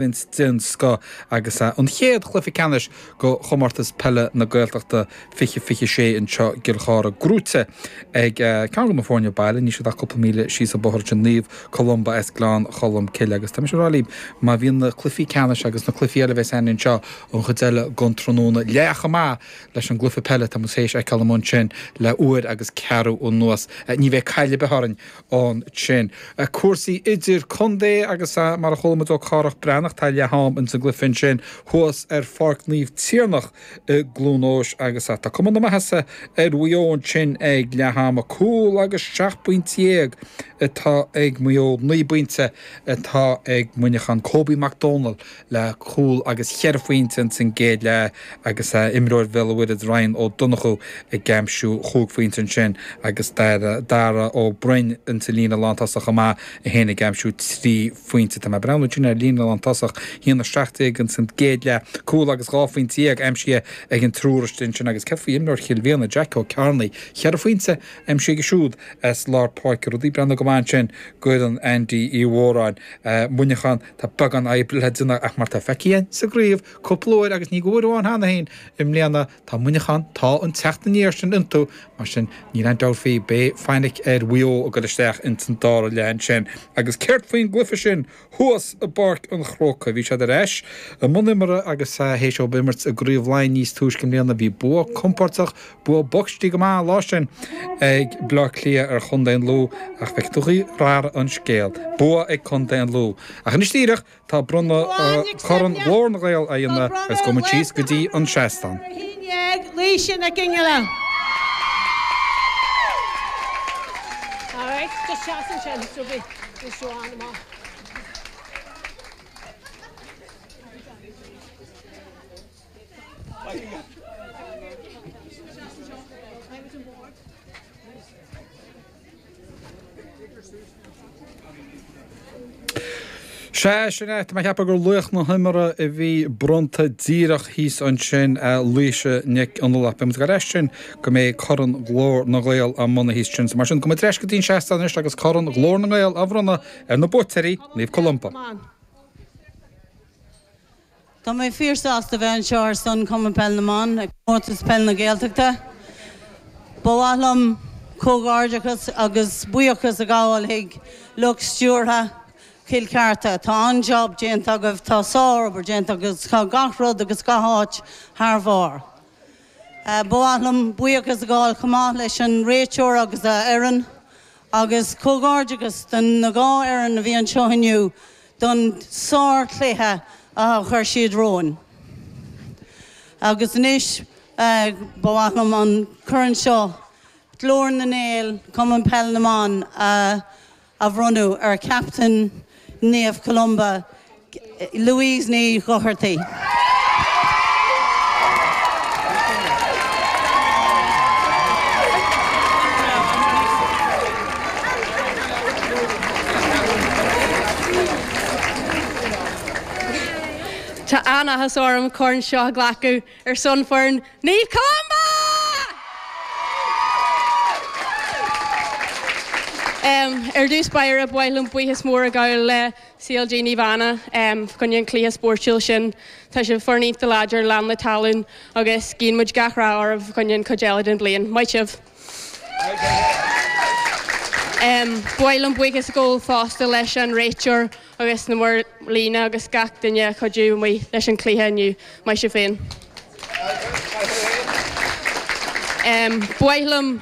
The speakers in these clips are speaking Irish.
Imirt den scoth agus an chéad chluiche ceannais go Chomórtas Peile na Gaeltachta 2026 anseo i gCill Chartha gnóite ag ceann de na foirne baile, níl siad ach cúpla míle síos an bóthar ansin, Naomh Columba as Gleann Cholm Cille agus tá mise ag rá libh má bhíonn na cluifí ceannais agus na cluifí eile a bheas againn anseo an chuid eile gon tráthnóna leath chomh maith leis an gcluife peile atá muid théis fheiceáil amuigh ansin le uair agus ceathrú anuas, ní bheidh caill ar bith orainn ansin. Cúrsaí idir contae agus ea mar a chuala muid ó Chárthach Breathnach tá leath am ins an gcluife ansin thuas ar Pháirc Naomh Tiarnach i gCluain Eois agus ea tá cuma na maitheasa ar Mhaigh Eo ansin ag leath ama. Cúl agus seacht bpointe déag atá ag Maigh Eo, naoi bpointe atá ag Muineachán. Kobe McDonald. le cúl agus cheithre phointe ins an gcéad leath agus imreoir Bhéal a'Mhuirthead Ryan Ó Donnchú ag aimsiú chúig phointe ansin agus Dara Ó Beirn ins an líne lántosach chomh maith, é féin ag aimsiú trí phointe. Tá mé ag breathnú ansin ar líne lántosach, a haon 17 ins an gcéad leath, cúl agus dhá phointe dhéag aimsithe ag an triúr istigh ansin agus céard faoi imreoir Chill Mhíona, Jack Ó Cearnaigh? Cheithre phointe aimsithe aige siúd as lár páirce, rudaí ag breathnú go maith ansin d'fhoireann Andy Uí Mhóráin, Muineachán. Tá beagán oibre le déanamh ach mar atá feicthe againn sa gcraobh cúpla uair agus ní go uair amháin cheana féin i mbliana, tá Muineachán tá an teacht aniar sin iontu. Mar sin níl aon dabht faoi, beidh fainic ar Mhaigh Eo ag goil isteach ins an dara leath ansin. Agus céard faoin gcluiche sin thuas i bPáirc an Chrócaigh? Bhí siad ar ais i mbun imeartha agus théis dóibh imirt i gcraobh Laighin níos túisce i mbliana, bhí bua compordach Bua bocht dtí go maith an lá sin ag Baile Átha Cliath ar chontae an Lú ach bhfeiceann tú an chaoi ar athraigh an scéal. Bua ag contae an Lú. Ach anois díreach tá bronnadh Corn Ghlór na nGael á dhéanamh agus gabhfaidh muid síos go dtí an seastán. Sea, sin é, tá mé a cheapadh gur laoch na himeartha a bhí bronnta díreach thíos ansin, Laoise Nic Fhionnghaile. Beidh muid ag goil ar ais ansin go mbeidh Corn Ghlór na nGael á bhronnadh thíos ansin. So mar sin, gabhfaidh muid ar ais go dtí'n seastán anois agus Corn Ghlór na nGael á bhronnadh ar na buaiteoirí, Naomh Columba. Tá mé fíor sásta bheith anseo ar son Cumann Peil na mBan ag Comórtas Peil na Gaeltachta. Ba mhaith liom comhghairdeachas agus buíochas a ghabháil chuig lucht stiúrtha Chill Chartha. Tá an-job déanta agaibh, tá sár-obair déanta agaibh agus tá gach rud agus gach áit thar bharr. Ba mhaith liom buíochas a ghabháil chomh maith leis an réiteoir agus a fhoireann agus comhghairdeachas do na dhá fhoireann a bhí anseo inniu, don sárchluiche a chuir siad romhainn agus anois ba mhaith liom an corn seo, Glór na nGael, Cumann Peil na mBan, a bhronnadh ar Chaptaen Naomh Columba, Louise Ní Dhochartaigh. Tá an-áthas orm an corn seo a ghlacadh ar son foireann Naomh Columba! Ar dtús ba mhaith liom buíochas mór a ghabháil le CLG Naomh Anna fa choinne an cluiche spóirtiúil sin. Tá sibh foireann iontach láidir, lán le tallann agus guíonn muid gach rath oraibh fa choinne an cuid eile den bliain. Maith sibh! Ba mhaith liom buíochas a ghabháil fosta leis an réiteoir agus na maor líne agus gach duine a chuidigh amuigh leis an chluiche inniu. Maith sibh féin. Ba mhaith liom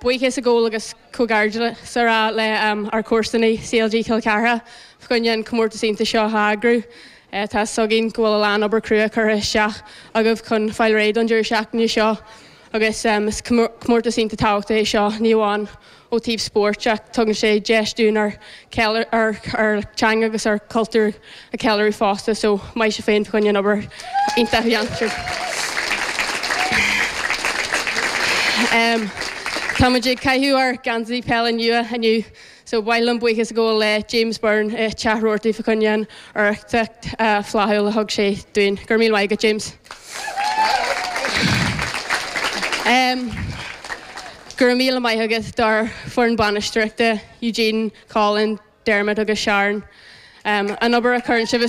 buíochas a ghabháil agus comhghairdeas a rá le ár comharsanaí CLG Chill Chartha fa choinne an comórtas iontach seo a eagrú. Tá 's againn go bhfuil a lán obair crua curtha isteach agaibh chun fáil réidh don deireadh seachtaine seo. agus is comórtas iontach tábhachtach é seo, ní amháin ó taobh spóirt ach tugann sé deis dúinn ár dteanga agus ár gcultúr a cheiliúradh fosta, so maith sibh féin fa choinne an obair iontach a dhéantar. Táimid ag caitheamh ár geansaí peile nua inniu So ba mhaith liom buíochas a ghabháil le James Byrne, téitheoir fa choinne an urraíocht flaithiúil a thug sé dúinn. Go raibh míle maith agat, James. Go raibh míle maith agat dár foireann bainisteoireachta, Eugene, Colin, Dermot agus Sharon. An obair a chuireann sibh.